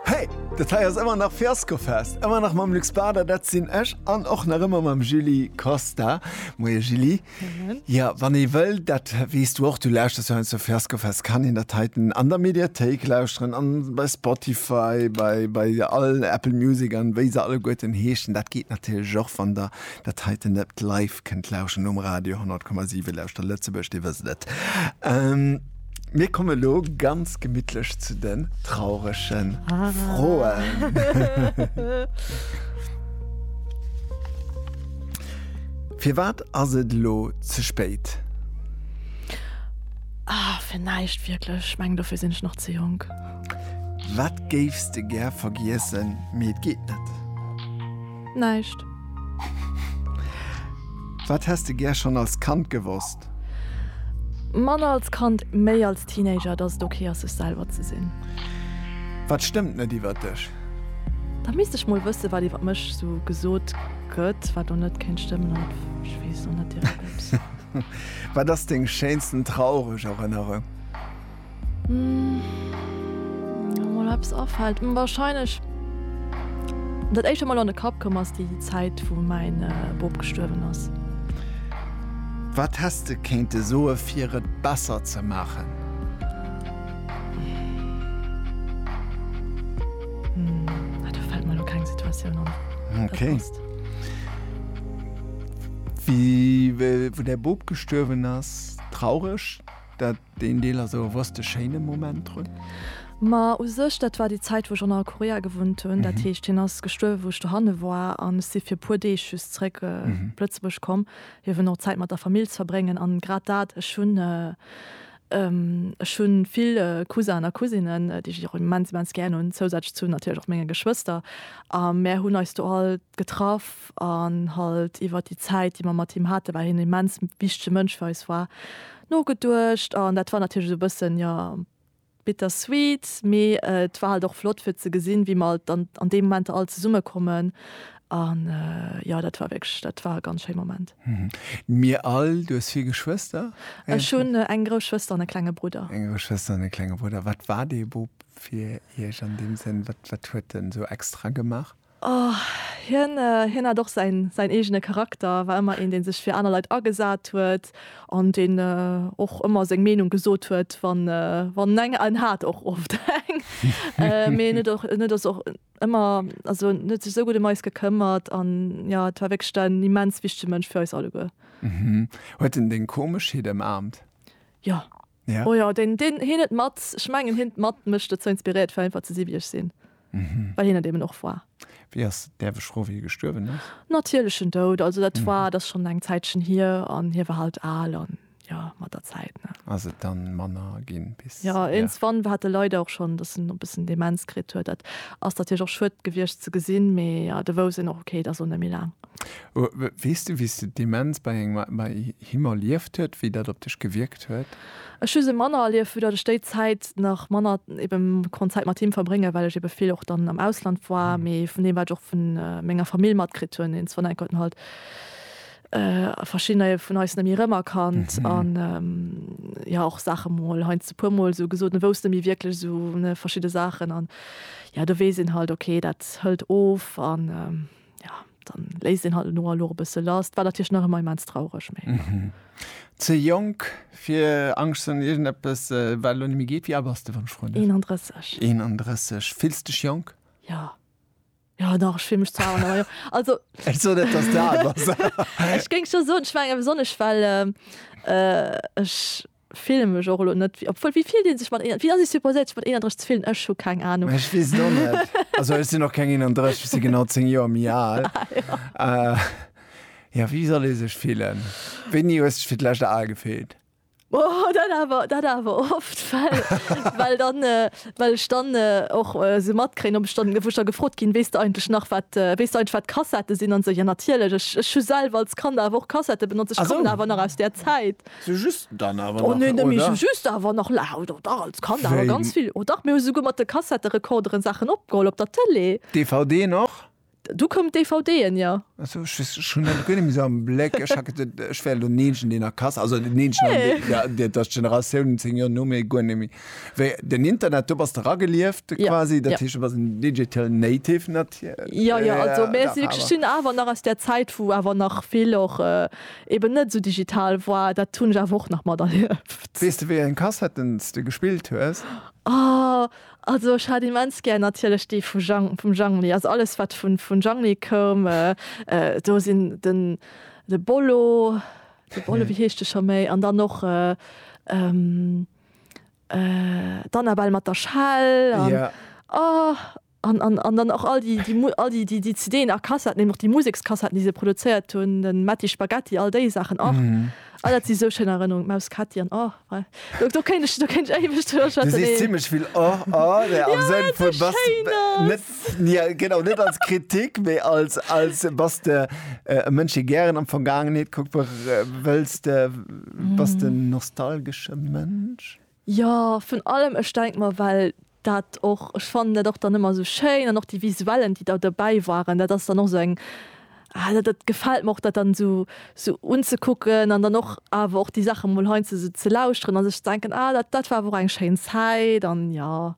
Hey! Dat hei ass ëmmer nach Fiaskofest, ëmmer nach mam Luc Spada, dat sinn ech, an och nach ëmmer mam Julie Costa. Moie Julie. Moien. Jo, wann ee wëll, dat weess du och, du lauschters jo heiansdo zu Fiaskofest, kann een dat heiten an der Mediathéik lauschteren, an bei Spotify, bei, bei all Apple Music an wéi se alleguerten heeschen. Dat geet natierlech och, wann der dat heiten net live kënnt lauschteren um Radio 100,7, lauschter Lëtzebuerg, dir wësst et. Mir komme lo ganz gemittlech zu den trauregen ah. Froen. Fir wat ass et lo ze spéit? Ah, fir näischt wierklech. Meng dofir sinn ech nach ze jonk. Wat géifs de gär vergiessen, mee et geet net? Näischt. Wat häss de gär schonn als Kand gewosst? Manner als Kand, méi als Teenager, dass et ok ass, sech selwer ze sinn. Wat stëmmt net iwwert dech? Da misst ech mol wëssen, wat iwwert mech sou gesot gëtt, wat do net kéint stëmmen. An ech weess och net direkt, ups. Wat ass deng schéinsten traureg Erënnerung? Mol eppes afällt wahrscheinlech dat éischt mol an de Kapp komm ass déi Zäit wou mäin Bop gestuerwen ass. Wat häss de kéinte soe fir et besser ze maachen? Hm do fällt mer elo keng Situatioun an. Ok. Wéi däi Bop gestuerwen ass, traureg dat? Deen Deel ass awer wou's de schéine Moment drun. Ma u sech, dat war déi Zäit, wou ech an Nordkorea gewunnt hunn. Dat heescht, hien ass gestuerwe wou ech dohanne war an ech si fir e puer Deeg just zréck op Lëtzebuerg komm, fir eben och Zäit mat der Famill ze verbréngen. An grad dat, ech hunn, ech hu vill Cousin a Cousinen, déi ech och immens, immens gären hunn, zousätzlech zu natierlech och menge Geschwëster. A mär hunn eis do all getraff. Grupp an halt iwwert déi Zäit, déi mer mat him haten, well hien e immens wichtege Mënsch fir eis war, nogeduecht. An dat war natierlech esou e bëssen, jo, bittersweet, mee et war halt och flott fir ze gesinn, wéi mer alt dann an deem Moment all zesummekommen. An jo, dat war wierklech, dat war e ganz schéi Moment. Mir all. Du hues vill Geschwëster? Ech hunn eng grouss Schwëster an e klenge Brudder. Eng grouss Schwëster an e klenge Brudder. Wat war dee Bub fir Iech an deem Sënn? Wat, wat huet en esou extra gemaach? Oh, hien, hien hat och säin, säin eegene Charakter, war ëmmer een, dee sech fir aner Leit agesat huet an deen och ëmmer seng Meenung gesot huet, wann, wann eng, en hat och oft eng, mee en huet och, en huet och ëmmer, also en huet sech esou gutt ëm eis gekëmmert an jo, et war wierklech en immens wichtege Mënsch fir eis alleguer. Huet en deng Komeschheet ëmaarmt? Jo. Ja. Oh jo, deen, deen, hien huet mat, ech mengen hien huet mat mech dozou inspiriert fir einfach ze si wéi ech sinn. Well hien et eben och war. Wéi ass, däerf ech froen, wéi hie gestuerwen ass? Natierlechen Doud, also dat war, dat ass schonn eng Zäitchen hier an hie war halt al an jo, mat der Zäit, ne. Ass et dann manner ginn bis, Ja, ja. iergendswann war, hat e leider och schonn, dass en e bëssen Demenz kritt huet. Dat ass natierlech och schued gewiescht ze gesinn, mee jo, de wousst een och, okay, et ass och net méi laang. Weess du wéi s de Demenz bei him erlieft huet, wéi dat op dech gewierkt huet? Ech hu se manner erlieft, vu datt ech déi Zäit nach manner ebe konnt Zäit mat him verbréngen, well ech ebe vill och dann am Ausland war, mee vun deem wat ech och vu menger Famill matkritt hunn, den Sven Eckert huet halt a verschiddener vun eis net méi rëmerkannt an jo och Saache mol heiansdo e puer mol esou gesot, en wousst net méi wierklech esou verschidde Saachen an jo do weess een halt ok dat hëlt of an. Ja, dann léisst een halt elo elo e bësse lass. War natierlech nach ëmmer immens traureg, mee ja. Ze jonk fir Angscht ze hunn, iergendeppes wat elo net méi geet. Wéi al bass de, wann ech froen däerf? 31. 31. Fills dech jonk? Ja. Jo, dach, ech fill mech zwar al, awer jo. Also. Ech soen net, dass de al bass. Ech géing scho soen, ech mengen besonnesch well ech, Fillen mech och elo net obwuel wéi fillt een sech mat wéi ass ee supposéiert sech mat 31 ze fillen? Ech hu keng Anung. Ech weess et och net. Also ech sinn och keng 31, ech si genau 10 Joer méi al. Jo wéi soll ee sech fillen? Wéini hues dech fir d'lescht al gefillt? Oh dat awer dat awer oft well well dann well ech dann och sou matkréien ob ech dann wou ech da gefrot ginn, weess de eigentlech nach wat weess de eigentlech wat Kassettë sinn an esou. Jo natierlech ech ech hu selwer als Kand awer och Kassettë benotzt, ech kommen awer nach aus där Zäit. Sou just dann awer nach, oder? Oh, nö, sou just awer nach, la, oh, dach, als Kand awer ganz vill, oh, dach, mir hu souguer mat de Kassetterekorderen Saachen opgeholl op der Tëlee. DVDen och? Du koum d'DVDen, jo. Ah, sou, ech weess, ech hunn dat guer net méi sou am Bléck. Ech hat geduet, ech wär elo den Eenzegen, deen nach Kas, also den Eenzegen an dee, jo, dat ass d'Generatioun zéng Joer no mir, guer net méi. Wéi den Internet, do bass de ragelieft quasi, dat heescht, du bass en Digital Native natierlech. Jo, jo, also, mä si, ech sinn awer nach aus där Zäit, wou awer nach vill och eben net esou digital woar, dat hunn ech awer och nach materlieft. Weess de wéi eng Kassetten s de gespillt hues? Oh, also ech hat immens gär natierlech déi vu Jhang, vum Jhangli, also alles wat vun vun Jhangli koum, do sinn den de Bollo, de Bollo, wéi heescht de scho méi, an dann och d'Annabelle mat der Schell an oh. An, an, an dann och all déi, déi, all déi, déi, déi CDen a Kassetten, eben och déi Musekskassetten, déi se produzéiert hunn, den Matti Spaghetti, all déi Saachen och. Oh, dat si sou schéin Erënnerungen, d'Maus Ketti an oh, wei. Do, do kéint ech, do kéint ech éiweg driwwer schwätzen. Du sees zimmlech vill oh, oh, ne, am Sënn vun, bass net, jo, genau, net als Kritik, mee als, als, bass de e Mënsch, dee gären an d'Vergaangenheet kuckt? Wëlls de, bass de en nostalgesche Mënsch? Jo, vun allem. Ech denk mer, well dat och, ech fannen dat och dann ëmmer esou schéin an och déi Visuellen, déi da dobäi waren, dat ass dann och esou eng, ah dat gefält mer och, dat dann esou esou unzekucken an dann och awer och déi Saache mol heiansdo esou ze lauschteren a sech ze denken, ah dat war awer och eng schéin Zäit. An jo,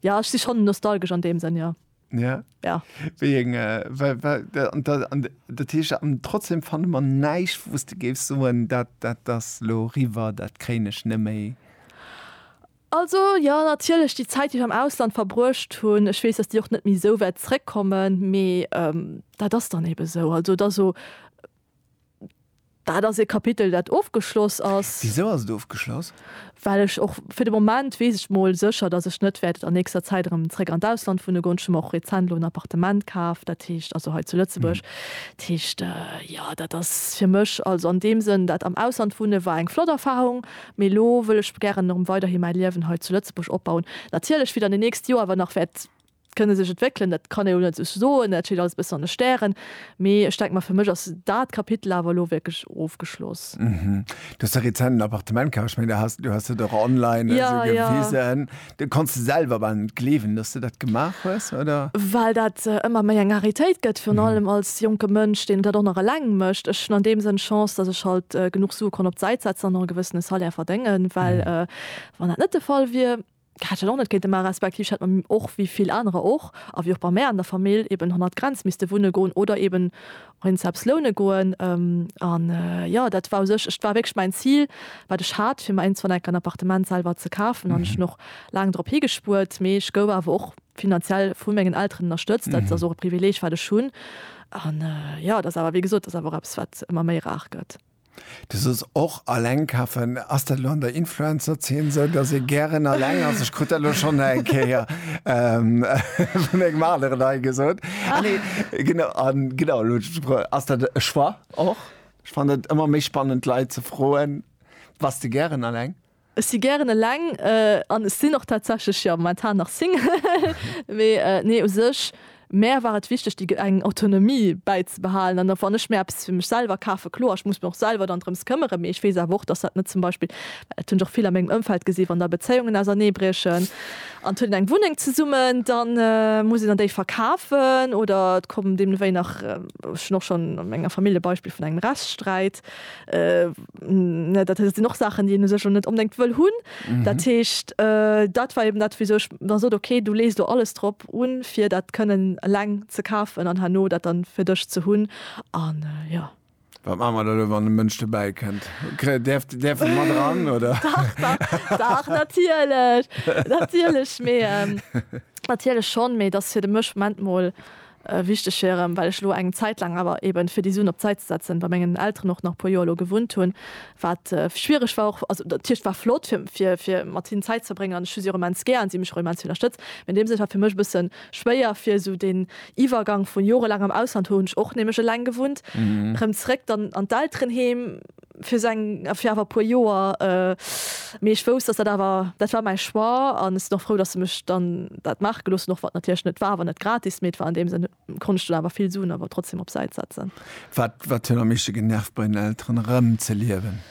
jo ech si schonn nostalgesch an deem Sënn, jo. Ja. Ja. Wéi eng, well, well, an, an, dat heescht, an trotzdem fanne mer näischt, wou s de géifs soen, dat, dat ass elo riwwer, dat kréien ech net méi. Also, jo, natierlech, déi Zäit, déi ech am Ausland verbruecht hunn, ech weess, dass déi och net méi esou wäert zréckkommen, mee dat ass dann ebe sou. Also, et ass o. Dat ass e Kapitel, dat ofgeschloss ass. Wisou ass et ofgeschloss? Well ech och, fir de Moment weess ech mol sécher, datt ech net wäert an nächster Zäit erëm zréck an d'Ausland wunne goen. Ech hu mer och rezent elo en Appartement kaf, dat heescht, also hei zu Lëtzebuerg. Dat heescht, jo, dat ass fir mech, also an deem Sënn, dat am Ausland wunne war eng flott Erfarung, mee elo wëll ech gären erëm weiderhi mäi Liewen hei zu Lëtzebuerg opbauen. Natierlech fir dann déi nächst Joer, wa nach wäert kënne sech entwéckelen, dat kann een elo net sou soen, dat steet alles e bëssen an de Stären, mee ech denke mer, fir mech ass dat Kapitel awer elo wierklech ofgeschloss. Mhm. Du hues de rezent en Appartement kaf, ech mengen, du has, du has dat och online esou gewisen. Ja, ja. Du konns de selwer bal net gleewen, dass du dat gemaach hues, oder? Well dat ëmmer méi eng Raritéit gëtt, virun allem als jonke Mënsch, deen dat och nach eleng mécht. Ech hunn an deem Sënn Chance, dass ech halt genuch Sue konnt op d'Säit setzen an och e gewëssene Salaire verdéngen, well wann dat net de Fall wier, Hätt ech och net kéinte man, respektiv ech hätt mer och wéi vill anerer och, a wéi och bei mär an der Famill, eben hannert Grenz misste wunne goen oder eben och eens eppes loune goen. An jo, dat war u sech, et war wierklech mäin Zil, wat ech hat, fir mer iergendwann enk en Appartement selwer ze kafen. An ech hunn och laang drop higespuert, mee ech gouf awer och finanziell vu mengen Elteren ënnerstëtzt. Dat ass och e Privileeg, wat ech hunn. An jo, et ass awer, wéi gesot, et ass awer och eppes, wat ëmmer méi rar gëtt. Du soos och alleng kafen. Ass dat elo an der Influencer-Zeen esou, dass ee gären alleng ass? Ech krut dat elo schonn eng Kéier vun engem aneren hei gesot. Ah nee, genau, a genau, elo huet ech gebraucht. Ass dat e Choix och? Ech fannen et ëmmer méi spannend, d'Leit ze froen, Bass de gären alleng? Ech si gären eleng an ech sinn och tatsächlech, jo, momentan nach Single. Mee nee, u sech, mär war et wichteg déi eng Autonomie bäizebehalen an wann ech mir eppes fir mech selwer kafen, kloer, ech muss mech och selwer dann drëms këmmeren, mee ech weess awer och, dass dat net zum Beispill, well dat hunn ech och vill a mengem Ëmfeld gesi wann da Bezéiungen auserneebriechen an et huet een eng Wunneng zesummen, da muss een dann déi verkafen oder et kommen deemnewéi nach, ech hunn och schonn a menger Famill e Beispill vun engem Rechtssträit, Dat heescht, et sinn och Saachen, déi een u sech net onbedéngt wëll hunn. Dat heescht, dat war eben dat, wisou ech da sot, ok, du lees do alles drop un, fir dat kënnen eleng ze kafen an herno dat da fir dech ze hunn. An jo. Wat maache mer dann elo, wann e Mënsch dobäi kënnt? Däerf en mat eran, oder? Dach, dach, dach, natierlech, natierlech, mee natierlech schonn, mee et ass fir de Mënsch, Moment mol, Wichteg fir erëm, well ech elo eng Zäit laang awer eben, fir déi Suen op d'Säit ze setzen, bei mengen Elteren och nach e puer Joer elo gewunnt hunn, wat schwiereg war och. Also dat heescht, war flott, fir, fir mat hinnen Zäit ze verbréngen an ech hu si och immens gär an si hu mech och immens vill ënnerstëtzt. Mee an deem Sënn, et war fir mech e bësse schwéier, fir esou deen Iwwergang vu jorelaangem Ausland, hu hunn ech och nämlech eleng gewunnt, erëm zeréck dann an d'Elterenheem. fir seng fir awer puer Joer mee ech wousst dass dat awer dat war mäi Choix an ech sinn och frou dass se mech dann dat maache gelooss hunn, och wann et natierlech net war, wann et gratis mee et war an deem Sënn konnt ech dann awer vill Suen awer trotzdem op Säit setzen. Wat wat huet am meeschte genervt bei den Elteren erëm ze liewen?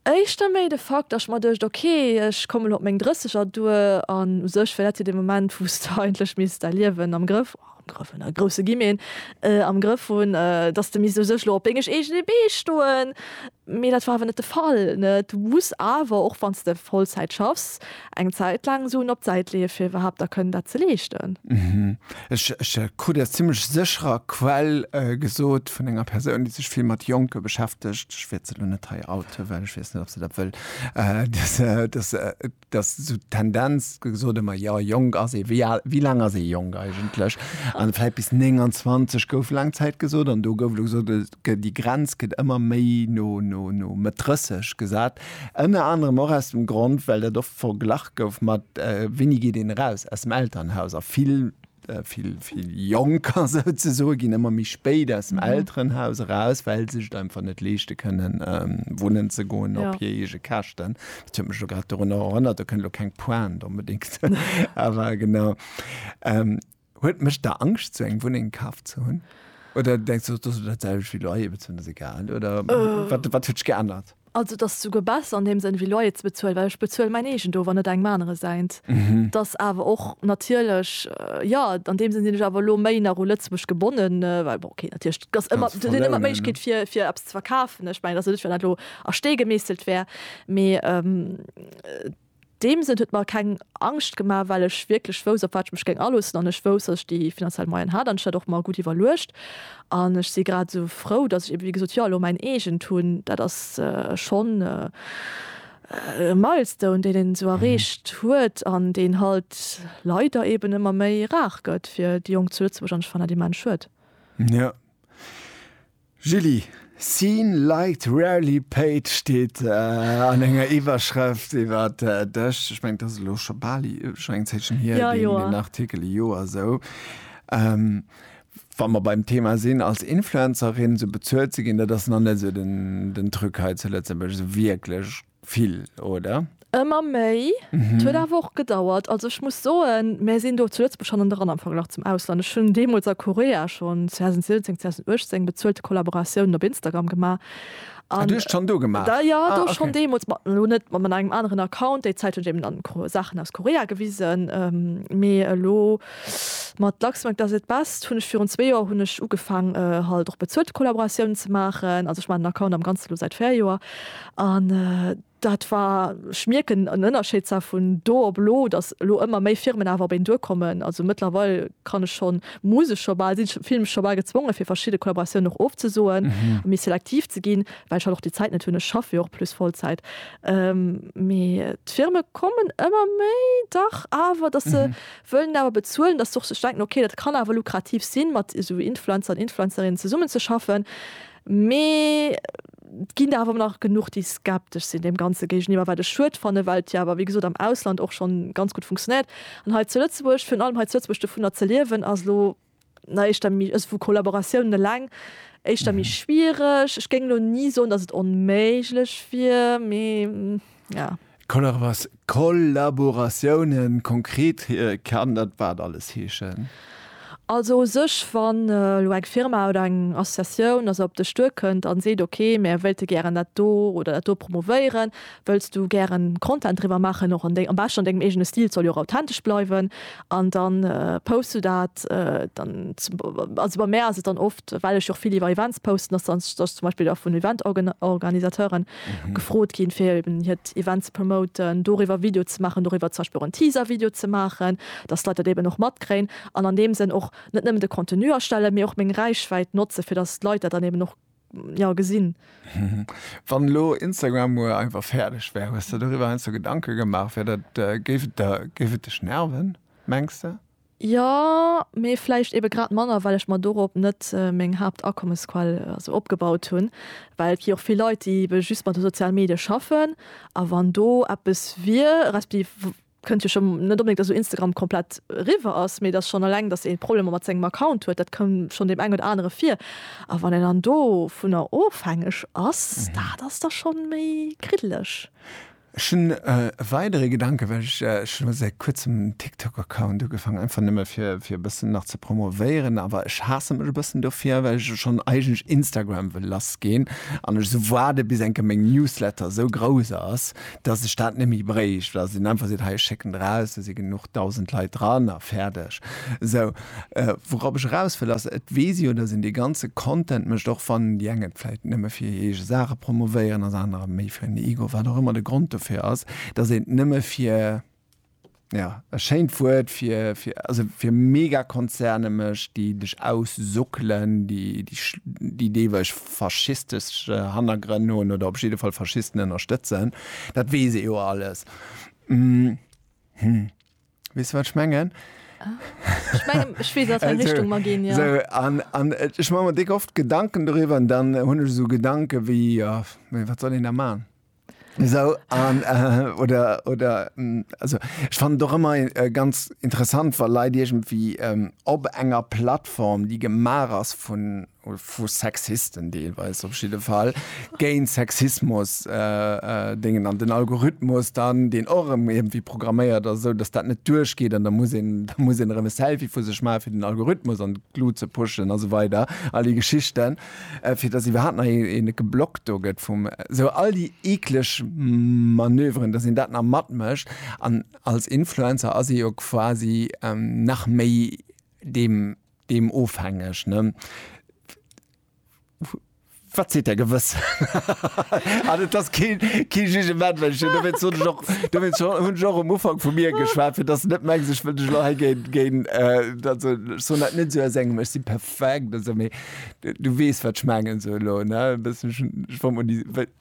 Éischter méi de Fakt dass ech mer duecht ok ech kommen elo op meng 30 er duer an u sech wär dat jo dee Moment wou s de eigentlech misst däi Liewen am Grëff am Grëff hunn, a grousse Guillemeten, am Grëff hunn, dass de misst u sech elo op dengeg eegene Bee stoen. Mee dat war awer net de Fall. Du muss awer, och wann s de Vollzäit schaffs, eng Zäit laang Suen op d'Säit leeë fir iwwerhaapt da kënnen dat ze leeschten. Ech krut aus zimmlech sécherer Quell gesot, vun enger Persoun, déi sech vill mat Jonke beschäftegt, ech wäert se elo net hei outen, well ech weess net, ob se dat wëll, dass, dass sou d'Tendenz gesot ëmmer, jo jonk ass ee, wéi al, wéi laang ass ee jonk eigentlech? An vläit bis 29 gouf laang Zäit gesot an do gouf elo gesot, et gëtt, déi Grenz gëtt ëmmer méi no, no, no Mëtt 30 gesat. Ënner anerem och aus dem Grond, well dat oft verglach gouf mat, Wéini geet een eraus aus dem Elternhaus? A vill vill vill Jonker sou ze soe ginn ëmmer méi spéit aus dem mhm. Elternhaus eraus, well sech da einfach net leeschte kënnen ähm, wunnen ze goen ja. op hir ege Kächten. Dat mech grad run erënnert, da kënne lo keng Poen unbedingt. Awer genau ähm, huet mech der Angst zu eng Wunneng kaf ze hunn. Oder denkst du dat selch wie Loyer bezuelen ass egal oder äh. wat wat huet geännert? Also et ass souguer besser an deem Sënn wéi Loyer ze bezuelen, well ech bezuele mäin eegent of an net engem anere säint. Et ass awer och natierlech, jo, an deem Sënn sinn ech awer elo méi nach u Lëtzebuerg gebonnen, well bon, okay, natierlech et ass ëmmer, et ass ëmmer d'Méiglechkeet fir fir eppes ze verkafen. Ech mengen, et ass jo net, wéi wann dat elo a Stee gemeesselt wär, mee et, deem Sënn huet mer keng Angscht gemaach, well ech wierklech wousst, op wat ech mech géing aloossen an ech wousst, datt ech déi finanziell Moyen hat an ech hat och mer gutt iwwerluecht an ech si grad esou frou, datt ech eebe wéi gesot jo elo mäin eegent hunn. Dat ass schonn e Milestone, deen een esou erreecht huet an deen halt leider eeben ëmmer méi rar gëtt fir déi Jonk zu Lëtzebuerg an ech fannen dat immens schued. Julie, Seen liked, rarely paid steet an enger Iwwerschrëft iwwer dech. Ech mengen, dat ass elo scho bal scho eng Zäitchen hier, deen Artikel, e Joer esou. Wa mer beim Thema sinn, als Influencerin esou bezuelt ze ginn, dat ass nach net esou den Truc hei zu Lëtzebuerg, esou wierklech. vill, oder? Ëmmer méi. Et huet awer och gedauert. Also ech muss soen, mär sinn do zu Lëtzebuerg hannen dran am Verglach zum Ausland. Ech hunn deemools a Korea schonn 2017, 2018 bezuelte Kollaboratiounen op Instagram gemaach. Ah, du hues et schonn do gemaach? Jo, do schonn deemools. Ma elo net mat engem aneren Account. Déi Zäit hunn ech eben dann Saachen aus Korea gewisen. Mee elo mat Luxembourg does it best hunn ech virun zwee Joer hunn ech ugefaang halt och bezuelte Kollaboratiounen ze maachen. Also ech maachen den Account am Ganze elo säit véier Joer. An dat war, ech mierken en Ënnerscheed zwar vun do op elo, datt elo ëmmer méi Firmen awer op een duerkommen. Also mëttlerweil kann ech schonn, muss ech scho bal, sinn ech, fillen ech scho bal gezwongen, fir verschidde Kollaboratiounen och ofzesoen a méi selektiv ze ginn, well ech halt och déi Zäit net hunn. Ech schaffe jo och plus Vollzäit. Mee d'Firme kommen ëmmer méi, dach awer, datt se wëllen awer bezuelen, datt se och sech denken, okay, dat kann awer lukrativ sinn, mat esou Influencer an Influencerinnen zesummenzeschaffen. Mee Et ginn der awer nach genuch, déi skeptesch sinn deem Ganze géigeniwwer, wat ech schued fanne well et jo awer, wéi gesot, am Ausland och schonn ganz gutt funktionéiert. An hei zu Lëtzebuerg, virun allem hei zu Lëtzebuerg, dovunner ze liewen ass elo na éischter méi, also vu Kollaboratiounen eleng, éischter méi schwiereg. Ech géing elo ni soen, datt et onméiglech wier, mee ja. Kollaboratiounen, konkret kann dat wat alles heeschen? Also u sech, wann elo eng Firma oder eng Associatioun also op dech duerkënnt an seet, ok mär wéilte gären dat do oder dat do promovéieren, wëlls du gären Content driwwer maachen, och am beschten an dengem eegene Stil, et soll jo och authentesch bleiwen, an dann posts du dat dann, also bei mär ass et dann oft, well ech och vill iwwer Events posten, dass dann zum Beispill vun Event-Organisateuren. gefrot ginn fir eben hiert Event ze promoten, doriwwer Video ze maachen, doriwwer zum Beispill och en Teaser Video ze maachen, dass d'Leit dat eben och matkréien an an deem Sënn och net nëmmen de Contenu erstellen, mee och meng Räichwäit notze fir dass d'Leit dat dann eben och, jo, gesinn. Wann elo Instagram muer einfach fäerdeg wär, hues de doriwwer heiansdo Gedanke gemaach, wär dat, géif et dech nerven, mengs de? Jo, mee vläicht ebe grad manner, well ech mer dorop net meng Haaptakommesquell esou opgebaut hunn. Well et gi och vill Leit, déi ebe just mat de soziale Medie schaffen. A wann do eppes wier, respektiv kënnt jo schonn net onbedéngt, datt elo Instagram komplett eriwwer ass, mee datt schonn eleng, datt ee Problemer mat sengem Account huet, dat koum schonn deem engen oder anere vir. A wann een dann dovunner ofhängeg ass, dat ass da schonn méi kriddeleg. Ech hunn e weidere Gedanken, well ech ech hunn elo säit kuerzem en TikTok-Account ugefaangen, einfach nëmme fir fir e bëssen nach ze promovéieren, awer ech haasse mech e bëssen dofir, well ech schonn eigentlech Instagram wëll lassgeen an ech esou waarde bis eng Kéier meng Newsletter esou grouss ass, dass ech dat net méi bréicht, well dass een einfach seet, hei ech schécken draus, do si genuch dausend Leit dran a fäerdeg esou. Wourop ech eraus wëll ass, et weess jo, dass een dee ganze Content mécht, och wann déi eng et vläicht nëmme fir hir eege Saache promovéieren, ass anerer méi fir en Ego, wat och ëmmer de Grond dofir ass, dass een et nëmme fir, jo, e schéint Wuert, fir, also fir Megakonzerne mécht, déi dech aussuckelen, déi deelweis faschistesch Hannergrënn hunn oder op jidde Fall Faschisten ënnerstëtzen. Dat weess ee jo alles. Hm. Wees wat ech mengen? Ech mengen, ech wees aus wat Richtung mer ginn, ja. So, an, an äh, ech mache mir dick oft Gedanken darüber an dann hunn ech so Gedanken wéi, ja, wat soll een da machen? So, an, äh, oder, oder, mm, also, ich fand doch immer äh, ganz interessant, weil Leute irgendwie ähm, ob enger Plattform, die gemacht ist von, vu Sexisten deelweis op jidde Fall géint Sexismus äh, äh, dingen an den Algorithmus dann den orem irgendwie programméiert as esou dass dat net duerchgeet an da muss een da muss een erëm e Selfie vu sech maache fir den Algorithmus an d'Glut ze pushen a sou weider all déi Geschichten äh, fir dass iwwerhaapt nach ee net geblockt do gëtt vum sou all déi eekleg Manöveren dass een dat nach matmécht an als Influencer ass ee jo quasi ähm, nach méi deem Deem ofhängeg, ne? Wat seet Är Gewëssen? An et ass kee, kee Jugement, well ech hunn, dowéinst hunn ech och, dowéinst hunn ech och um Ufank vu mir geschwat, fir dass Der net mengt, ech wëll lech elo hei géint, géint, also ech soen dat net sou aus engem Ech si perfekt, also, mee Du weess, wat ech mengen, sou elo, ne? E bëssen, ech wollt mol déi, well.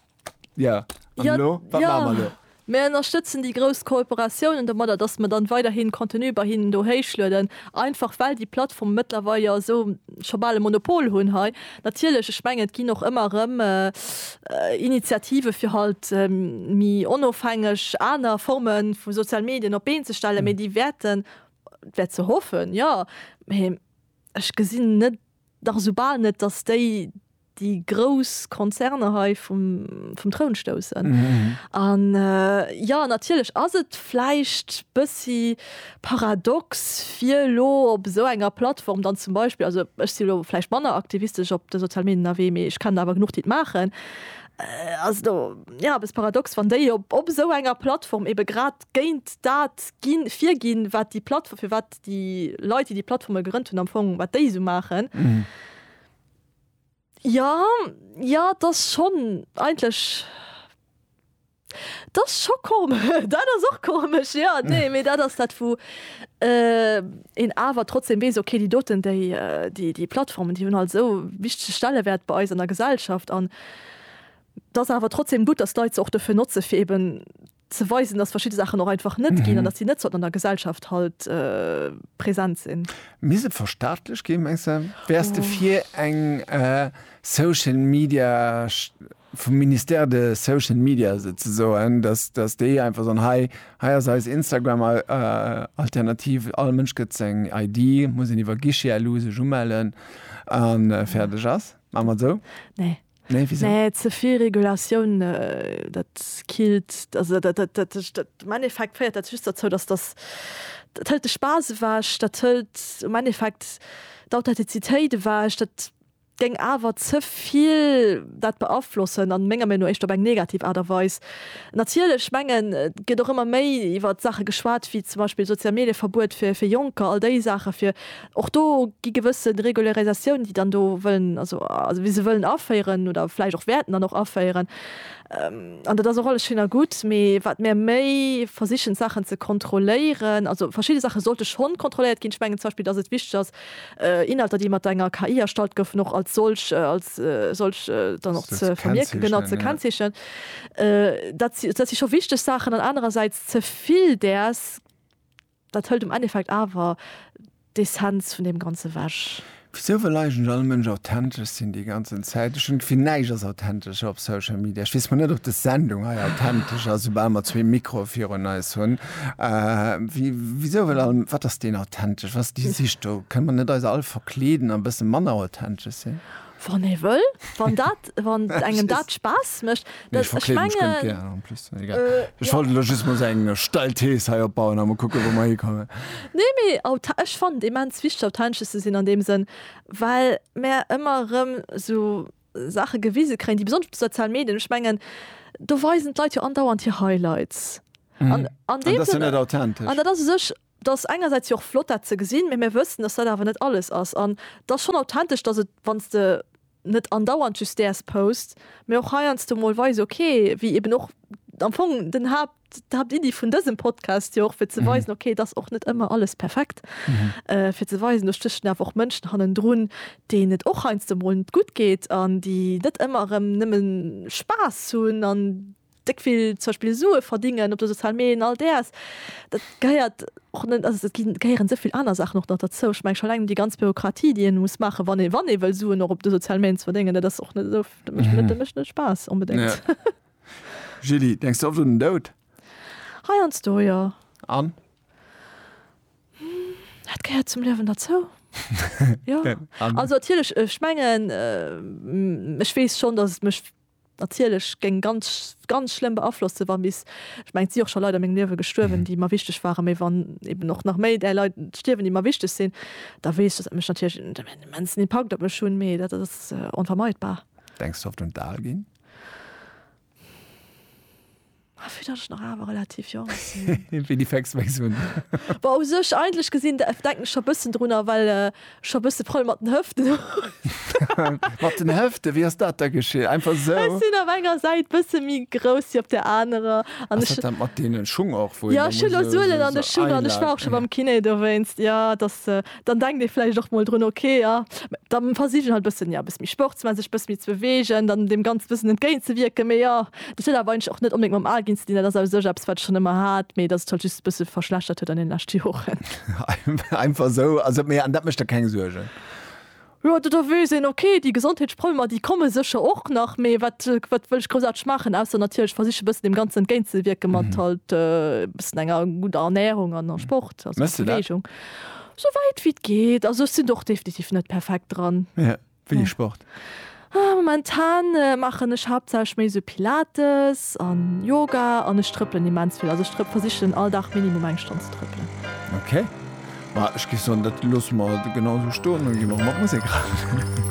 Ja, an ja, lo? Wat ja. machen wir lo? Mir ënnerstëtzen déi grouss Kooperatiounen domadder, dass mer dann weiderhin Contenu bei hinnen do héichlueden, einfach well déi Plattformen mëttlerweil jo esou scho bal e Monopol hunn hei. Natierlech, ech mengen, et ginn och ëmmer erëm Initiative fir halt méi onofhängeg aner Forme vu soziale Medien op d'Been ze stellen, mee déi wäerten, dat wäert se hoffen, jo, mee ech gesinn net, Dach esou bal net, dass déi déi grouss Konzerne hei vum vum Troun stoussen. An jo, natierlech ass et vläicht bëssi paradox fir elo op esou enger Plattform dann zum Beispill, also ech si elo vläicht manner aktivistesch op de sozial Medien ënnerwee, mee ech kennen der awer genuch déi et maachen, ass elo jo eppes paradox wann déi op op esou enger Plattform ebe grad géint dat ginn, virginn, wat déi Plattformen, fir wat déi Leit, déi déi Plattforme gegrënnt hunn, am Fong, wat déi esou maachen. Jo, jo, 't ass schonn eigentlech, 't ass scho komesch, dat ass och komesch, jo. Nee, mee dat ass dat, wou een awer trotzdem weess, okay, déi doten, déi, déi Plattformen, déi hunn halt esou e wichtege Stellewäert bei eis an der Gesellschaft. An 't ass awer trotzdem gutt, dass d'Leit se och dofir notzen, fir eeben, ze weisen, dass verschidde Saachen och einfach net ginn an dass si net sollten an der Gesellschaft halt present sinn. Misst et verstaatlech ginn, mengs de? Wäers de fir eng Social Media, vum Ministère de Social Media souzesoen, dass déi einfach soen, hei ass eis Instagram Alternativ, all Mënsch gëtt seng ID, muss een iwwer Guichet elo sech umellen a fäerdeg ass? Maache mer et esou? Nee. Nee, wéi sou? Nee, ze vill Regulatioun, dat killt, also dat, dat, dat, dat, am Endeffekt féiert dat just derzou, dass dass, dat hëlt de Spaass ewech, dat hëlt am Endeffekt d'Authentizitéit ewech, dat géing awer ze vill dat beaflossen a menger Meenung no éischter op eng negativ Aart a Weis. Natierlech, ech mengen, et gëtt och ëmmer méi iwwert Saache geschwat wéi zum Beispill Sozial-Medie-Verbuet fir fir Jonker, all déi Saache fir, Och do gi gewësse Regularisatiounen, déi dann do wëllen, also wéi se wëllen aféieren oder vläicht och wäerten dann och aféieren. An dat ass och alles schéin a gutt, mee wat mir méi versichen d'Saachen ze kontrolléieren, also verschidde Saache sollte schonn kontrolléiert ginn. Ech mengen zum Beispill, dass et wichteg ass, Inhalter, déi mat enger KI erstallt goufen, och als solch, als solch dann och ze vermierken, genau, ze kennzeechnen. Dat si scho wichteg Saachen. An anerersäits, ze vill däers Dat hëlt am Endeffekt awer d'Essenz vun deem Ganze wech. Wisou wëll eigentlech all Mënsch authentesch sinn déi ganzen Zäit? Ech hunn d'Gefill, näischt ass authentesch op Social Media. Ech weess mol net, ob des Sendung hei authentesch ass, soubal mer zwee Mikroe virun eis hunn. Wisou wëll all, wat ass deen authentesch, wat ass déi Sich do? Kënne mer net eis all verkleeden a e bësse manner authentesch sinn? Wann ee wëll, wann dat, wann engem dat Spaass mécht. Nee, ech verkleeden mech ganz gär en plus. Egal. Ech wollt elo just mol esou eng steil Thees hei opbauen a mol kucke wou mer hikommen. Nee, mee aut, ech fannen et immens wichteg authentesch ze sinn an deem Sënn, well mär ëmmer erëm esou Saache gewise kréien, déi besonnesch op de sozialen Medien, ech mengen do weisen d'Leit jo andauernd hir Highlights an an deem Sënn. An dat ass jo net authentesch. An dat ass u sech Et ass engersäits jo och flott dat ze gesinn, mee mir wëssen, dass dat awer net alles ass. An et ass schonn authentesch, dass et, wann s de net andauernd just däers post, mee och heiansdo mol weis, okay, wéi eben och am Fong den Haapt, d'Haaptiddi vun dësem Podcast jo och, fir ze weisen, okay, et ass och net ëmmer alles perfekt, fir ze weisen, do stéchen awer och Mënschen hannendrun, deenen et och heiansdo mol net gutt geet an déi net ëmmer erëm nëmme Spaass hunn an. déck vill zum Beispill Sue verdingen op de sozialen Medien, all däers, dat gehéiert och net, also et gehéieren esou vill aner Saachen och nach derzou. Ech mengen scho eleng déi ganz Bürokratie, déi een muss maachen, wann ee wann ee wëll Suen och op de sozialen Medien ze verdingen, dat ass och net esou, dat mécht net dat mécht net Spaass onbedéngt. Julie, denks de oft un den Doud? Heiansdo, jo. An? Dat gehéiert zum Liewen derzou, jo. Also natierlech, ech mengen, ech weess schonn, datt et mech natierlech géing ganz, ganz schlëmm beaflossen, wa bis, ech mengen, et si och scho Leit a mengem Liewe gestuerwen, déi mer wichteg waren, mee wann eben och nach méi där Leit stierwen, déi mer wichteg sinn, da weess ech, datt dat mécht natierlech en immensen Impakt op mech hunn, mee dat ass onvermeidbar. Denks de oft un d'Al ginn? Ah, vu dat ech nach awer relativ jonk sinn. Wéi déi Facts wéi hunn. Wa u sech eigentlech gesinn de denken ech scho bëssen drunner, well ech scho bësse Problem mat den Hëften hunn. Mat den Hëften? Wéi ass dat da geschitt? Einfach esou? Ech sinn op enger Säit bësse méi grouss wéi op där anerer an Ass ech. dat dat mat deenen Schung och, wou een da muss esou. Jo, ech hunn elo Suelen an de Schung an ech war och scho beim Kiné dowéinst. Jo, et ass Dann denkt ee vläicht och mol drun, ok, jo, da versich ech halt e bëssen, jo, e bësse méi Sport ze maachen, sech e bësse méi ze beweegen, dann deem Ganze e bëssen entgéint ze wierken. Mee jo, dat huet awer eigentlech och net onbedéngt mam Al ginn ze dinn. Dat ass au sech eppes, wat ech schonn ëmmer hat, mee dat sech halt just e bësse verschlechtert huet an deene leschte Joren. Einfach esou? Also, mee an dat mécht der keng Suergen? Jo, do do weess een, okay, déi Gesondheetsproblemer, déi komme sécher och nach, mee wat, wat wëll ech groussaarteg maachen, ausser natierlech versiche e bëssen deem Ganzen entgéint ze wierken mat halt e bëssen enger gudder Ernärung an a Sport, also Méchs du dat? Beweegung. Souwäit wéi et geet. Also ech sinn do och definitiv net perfekt dran. Wéini Sport? Momentan maachen ech haaptsächlech méi esou Pilates an Yoga an ech trëppelen immens vill. Also ech trëpp, versichen all Dag minimum eng Stonn ze trëppelen. Ok, ma ech géif soen dat loosse mer genau esou stoen an gi mer mat Musek ran.